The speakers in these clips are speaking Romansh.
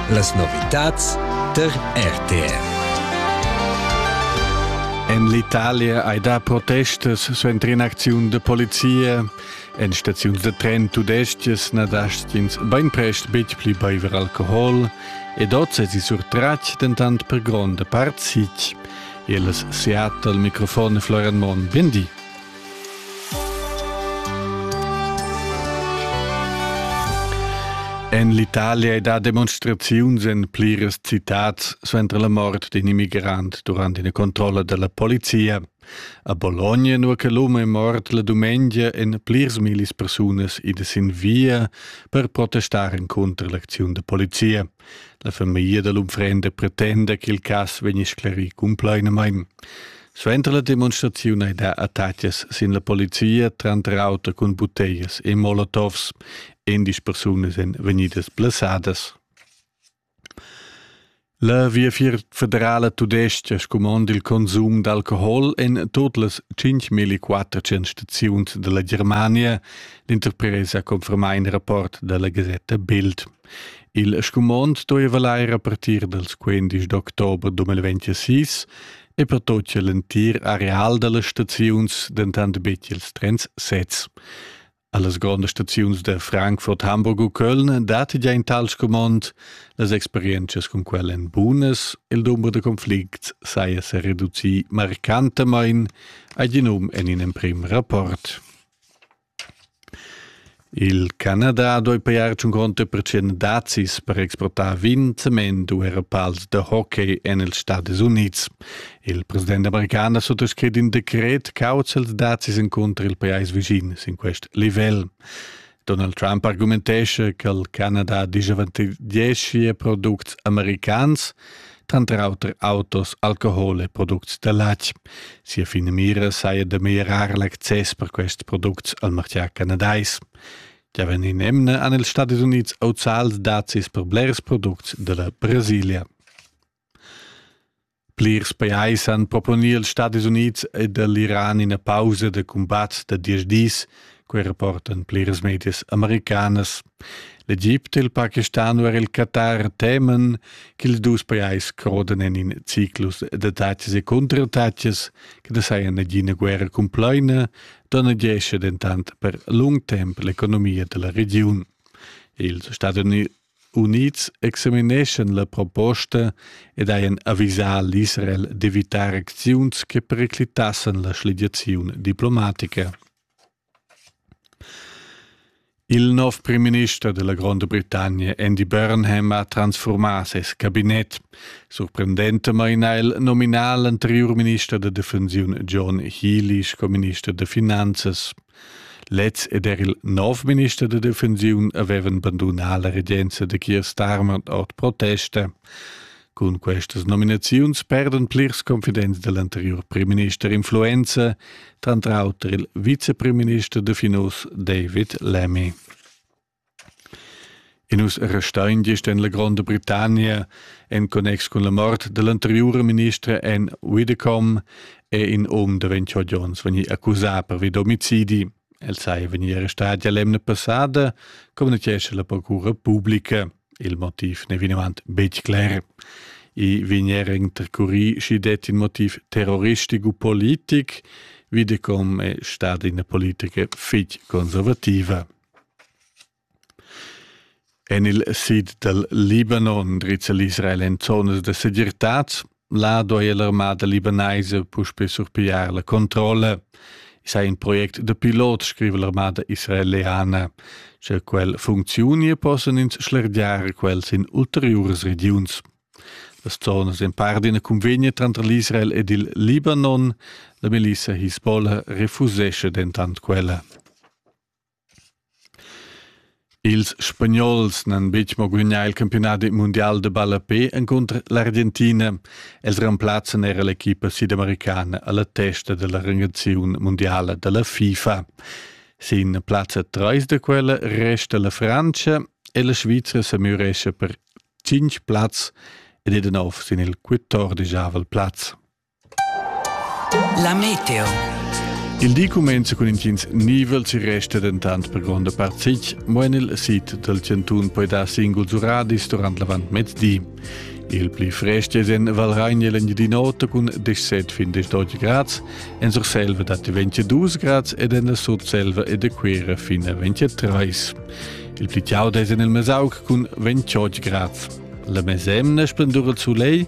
Las novitads der RTR. En l'Italia hai dà protestas suenter in'acziun da polizia. En staziuns da tren tudestgas na dastgins bainprest betg pli baiver alcohol ed oz èsi surtratg dentant per gronda part sitg. Il Seattle, microfon Florian Monn, bien di. En l'Italia è da demonstraziuns en pliras citads suenter la mort d'in immigrant durant ina controlla da la polizia. A Bologna, nua che l'um è mort la dumengia, en plirs millis persunas ida sin via per protestar encunter l'acziun da polizia. La famiglia da l'unfrenda pretenda ch'il cass vegni sclerì cumplainamain. Suenter la demonstraziun ei dat attacas sin la polizia, tranter auter cun buteias e molotovs. Endisch persunas ein vegnidas blessadas. La Viafier federala tudestga scumond il consum d'alcohol en tot las 5400 staziuns dalla Germania. L'interpresa conferma in rapport dalla gasetta Bild. Il scumond stueva lair a partir dals quindisch d'october 2026 e per tot cha l'entir areal da las staziuns dentant bet ils trens sezs. A las grondas staziuns da Frankfurt, Hamburg u Köln dat già in tal scumond, las experientschas cun quel èn bunas, il dumber da conflicts saja sa reducì marcantamain, ha gi num en in emprim rapport. Il Canada doi pajar tschun gronda pertschient dazis per exportar vin, cement u era pals da hockey en ils Stadis Unids. Il president american ha suttascrit in decret causa ils dazis encunter il pajais visin sin quest livel. Donald Trump argumentescha che il Canada disavantaggeschia products americans, tranter auter autos, alcohol e products da latg. Sia finamira saja da mirar l'access per quests products al martgà canadais. Ja ven in emne an els Stati Units auzals dazis per blers products de la Brasilia. Plirs pajais han proponiert els Stati Units ed l'Iran ina pausa de combat da dies dis Quei rapportan pliras medias americanas. L'Egipte e il Pakistan u er il Qatar temen ch'ils dus pajais crodan en in ciclus da taxas e cuntrataxas che da saja nagina guerra cumplaina, donnegescha dentant per lung temp l'economia da la regiun. Ils Stati Unids examineschan la proposta ed hajan avisà l'Israel d'evitar acziuns che periclitassan la schligiaziun diplomatica. Il nov primminister della Gronda Britannia Andy Burnham ha transformà ses cabinet. Surprendentamain ha el nominà l'anterior minister da defensiun John Healy sco minister da finanzas. Lez ed er il nov minister da defensiun avevan bandunà la regenza da Keir Starmer ord protesta. Cun questas nominaziuns perdan plirs confidents da l'anterior primminister influenza, tranter auter il vicepremister da Finos David Lemmy. E nus restain gist en la Gronda Britannia en connex cun la mort dall'anteriura ministra Anne Widdecombe è in um da 28 onns vegni accusà pervi d'omicidi. El saja vegnì arrestà l'emna passada, communicescha la procura pubblica. Il motiv n'è vinavant betg cler. I vegniera intercurì sch'i detti in motiv terroristico politic. Widdecombe è stada ina politica fitg conservativa. En il sid dal Libanon drizza l'Israel en zonas da segirtad. Là duaja l'armada libanaisa puspè surpigliar la controlla. I sei in project da pilot, scrive l'armada israeliana. Sche quel funcziunia, possan ins schlergiar quels in ulteriuras regiuns. Las zonas en par d'ina convegna tranter l'Israel ed il Libanon. La Melissa Hisbollah refusesce dentant quella. Ils Spagnols n'han betg mo gudagnà il campiunadi mundial da ballape encunter l'Argentina. Els remplazzan era l'equipa sidamericana a la testa da la rangaziun mundiala da la FIFA. Sin plazza 3 da quella resta la Frantscha e la Svizra sa mürescha per 5 plazs ed è da nov sin il quatordegiavel plaz. La meteo. Il di cumenza cun intgins nivel si resta dentant per gronda part sitg, mo en il sid dal chantun poi dar singuls uradis durant l'avantmezdi. Il pli frest è en Valragna l'Engiadin'Ota cun 17 fin 18 grads, en Surselva datti 22 grads ed en la Sutselva e da Cuira fin a 23. Il pli chaud è en il Mesauc cun 28 grads. La mesemna splendur il soleil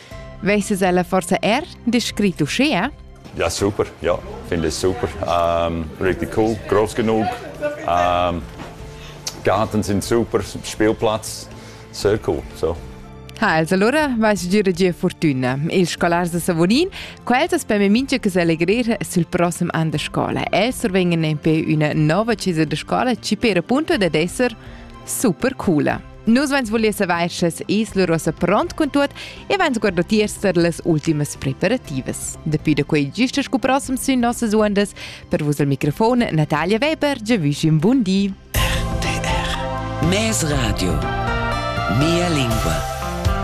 Vesses ella forsa er descrit uschea? Ja, super, ja, finde ich super. Ähm, richtig cool, groß genug. Ähm, Garten sind super, Spielplatz, sehr cool. So. Ha, els allora vais gira gia fortuna. Il scolars da Savonin, quels as peme mincha che s'allegrir sul prossem an da scola. Els survengen nempe üna nova cesa da scola ci per appunto dad esser Super cool! Nus vens voler saver sche es la rosa pront cun tuot e vens guardo tiers per las ultimas preparativas. Dapi da quei gista sco prossem sün nossas undas, per vus al microfon Natalia Weber, già vischin bun di. RTR Mes Radio Mia lingua